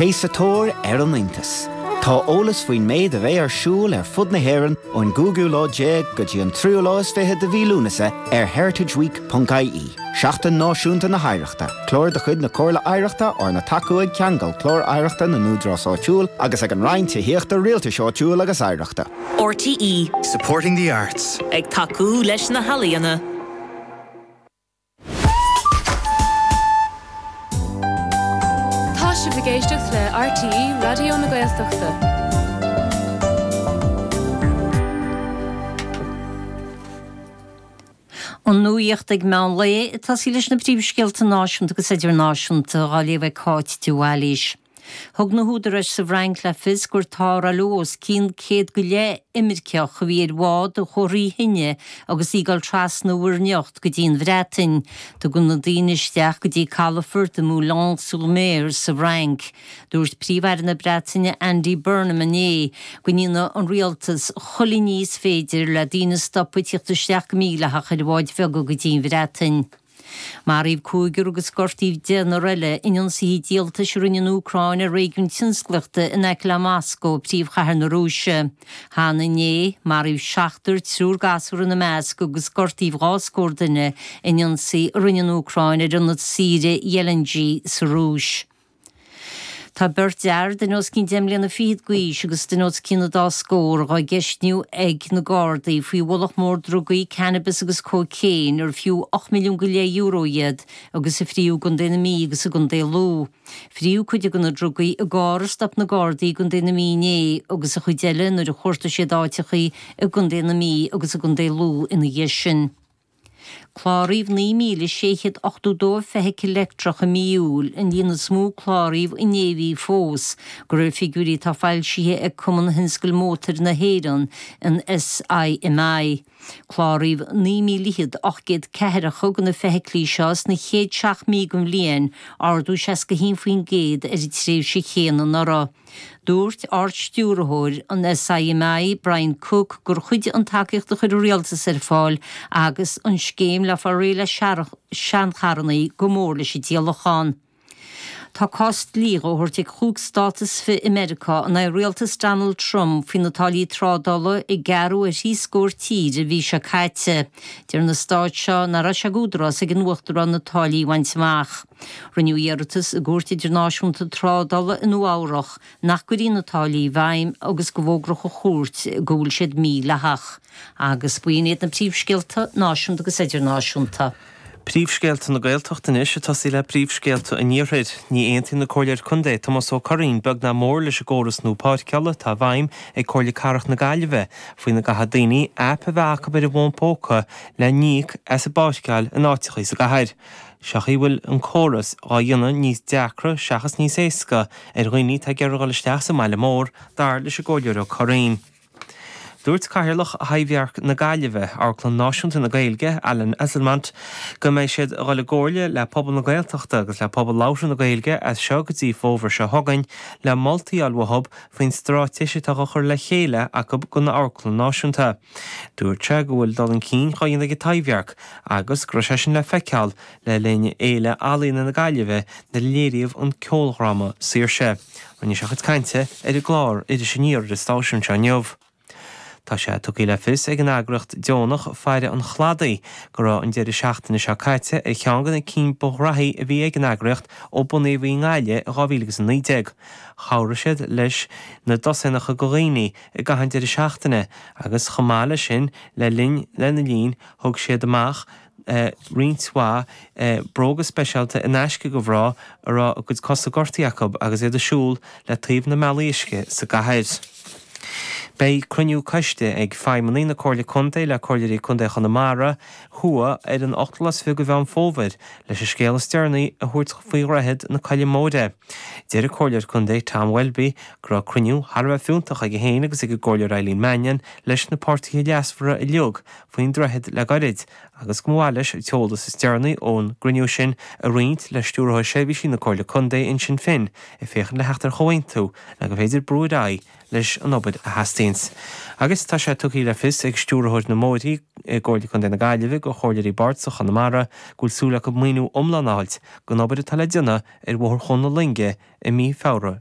Bí sa tóir ar an iontas! Tá eolas faoin méid a bheidh ar siúl ar fud na hÉireann ón gcúigiú lá déag go dtí an tríú lá is fiche de mhí Lúnasa ar heritageweek.ie. Seachtain Náisiúnta na hOidhreachta, Clár de chuid na Comhairle Oidhreachta arna tacú ag Ceangal, Clár Oidhreachta na nÚdarás Áitiúil agus ag an Roinn Tithíochta, Rialtais Áitiúil agus Oidhreachta. RTÉ. Supporting the arts. Ag tacú leis na healaíona. Tá sibh ag éisteacht le RTÉ Raidió na Gaeltachta. An nuacht ag meán lae, ag tosaí leis na príomhscéalta náisiúnta agus idirnáisiúnta dhá léamh ag Cáit de Bhailís. Thug na húdaráis sa bhFrainc le fios gur tarrtháladh os cionn céad go leith imirceach a bhí ar bhád a chuaigh trí thine agus í ag dul trasna Mhuir nIocht go dtí an Bhreatain. Tugadh na daoine isteach go dtí calafort i mBoulogne-sur-Mer sa bhFrainc. Dúirt Príomh-Aire na Breataine Andy Burnham inné go ndéanfaidh an rialtas chuile ní is féidir le daoine a stopadh ag tíocht isteach go mídhleathach ar bháid bheaga go dtí an Bhreatain. Maraíodh cúigear agus gortaíodh deichniúr eile in ionsaithe díoltais a rinne an Úcráin ar réigiún tionsclaíochta in aice le Moscó, príomhchathair na Rúise. Cheana inné, maraíodh seachtar triúr gasúr ina measc agus gortaíodh dhá scór duine in ionsaí a rinne an Úcráin ar ionad saoire Gelendzhik sa Rúis. Tá beirt fhear duine os cionn deich mbliana fichead d'aois agus duine os cionn an dá scór dhá gceistiú ag na Gardaí faoi bhulc mór drugaí, cannabis agus cóicéin, ar fiú ocht milliún go leith euro iad, agus a frítheadh i gContae na Mí agus i gContae Lú. Frítheadh cuid de na drugaí i gcarr a stop na Gardaí i gContae na Mí inné agus an chuid eile nuair a chuartaigh siad áiteacha i gContae na Mí agus i gContae Lú ina dhiaidh sin. Cláraíodh 9,682 feithicil leictreach i mí Iúil, an líon is mó a cláraíodh in aon mhí fós, de réir figiúirí atá foilsithe ag Cumann Thionscal Mótair na hÉireann, an SIMI. Cláraíodh 29,840 de na feithiclí seo sna chéad seacht mí den bhliain, ardú 61% ar an tréimhse chéanna anuraidh. Dúirt Ard-Stiúrthóir an SIMI, Brian Cooke, gur chuidigh an tacaíocht a chuir an Rialtas ar fáil agus an scéim le fáil réidh le seancharrannaí go mór leis an díolachán. Tá cás dlí dhá thabhairt ag cúig stát is fiche i Meiriceá in aghaidh Rialtas Donald Trump faoi na táillí trádála a gearradh ar thrí scór tír an mhí seo caite. Deir na stáit seo nach raibh sé d'údarás ag an Uachtarán na táillí a bhaint amach. Rinneadh iarratas i gCúirt Idirnáisiúnta Trádála i Nua-Eabhrach nach gcuirfí na táillí i bhfeidhm agus go bhfógródh an Chúirt go bhfuil siad mídhleathach. Agus b'in iad na príomhscéalta náisiúnta agus idirnáisiúnta. Príomhscéalta na Gaeltachta anois ag tosaí le príomhscéalta an iarthair. Ní aontaíonn an Comhairleoir Contae Tomás Ó Curraoin beag ná mór leis an gcóras nua páirceála atá i bhfeidhm ag Comhairle Cathrach na Gaillimhe faoina gcaithfidh daoine aip a bheith acu ar a bhfón póca le n-íoc as a bpáirceáil in áiteachaí sa gcathair. Sé an chaoi a bhfuil an córas á dhéanamh níos deacra seachas níos éasca ar dhaoine atá ag iarraidh dul isteach sa mbaile mór, dar leis an gComhairleoir Ó Curraoin. Dúirt Cathaoirleach Thaibhdhearc na Gaillimhe, Amharclann Náisiúnta na Gaeilge, Alan Esslemont, go mbeidh siad ag dul i gcomhairle le pobal na Gaeltachta agus le pobal labhartha na Gaeilge as seo go dtí fómhar seo chugainn le moltaí a fháil uathu faoin straitéis atá á chur le chéile acu don amharclann náisiúnta. Dúirt sé go bhfuil dul chun cinn á dhéanamh ag an Taibhdhearc agus go raibh sé sin le feiceáil le linn Fhéile Ealaíona na Gaillimhe nuair a léiríodh an ceoldhráma Saoirse. Rinne sé a chuid cainte ar an gclár Iris Aniar ar an stáisiún seo inniu. Tá sé tugtha le fios ag an eagraíocht deonach Faire an Chladaigh go raibh an deireadh seachtaine seo caite ar cheann de na cinn ba ghraithí a bhí ag an eagraíocht ó bunaíodh í i nGaillimh in 2019. Chabhraigh siad leis na dosaenacha de dhaoine a i gcaitheamh an deireadh seachtaine agus chomh maith leis sin le linn lena linn thug siad amach roinnt mhaith bróga speisialta in aisce do mhná a raibh a gcuid cosa gortaithe acu agus iad ag siúl le taobh na mbealaí uisce sa gcathair. Beidh cruinniú coiste ag feidhmeannaigh na Comhairle Contae le Comhairleoirí Contae Chonamara thuaidh ar an 8ú lá is fiche de Mheán Fómhair leis an scéal is deireanaí a thabhairt faoi Dhroichead na Coille Móire. Deir an Comhairleoir Contae Tom Welby go raibh cruinniú thar a bheith fiúntach aige féin agus ag an gComhairleoir Eileen Mannion leis na páirtithe leasmhara uilig faoin droichead le gairid agus go mba mhaith leis an t-eolas is deireanaí ón gcruinniú sin a roinnt le Stiúrthóir Seirbhísí na Comhairle Contae Uinsinn Finn ag féachaint le theacht ar chomhaontú le gur féidir brú ar aghaidh leis an obair a theastaíonns agus tá sé tugtha le fios ag Stiúrthóir na mBóithrí i gComhairle Contae na Gaillimhe do chomhairleoirí bardasach Chonamara go bhfuil súil acu maoiniú iomlán a fháilt don obair atá le déanamh ar Bhóthar Chuan na Loinge i mí Feabhra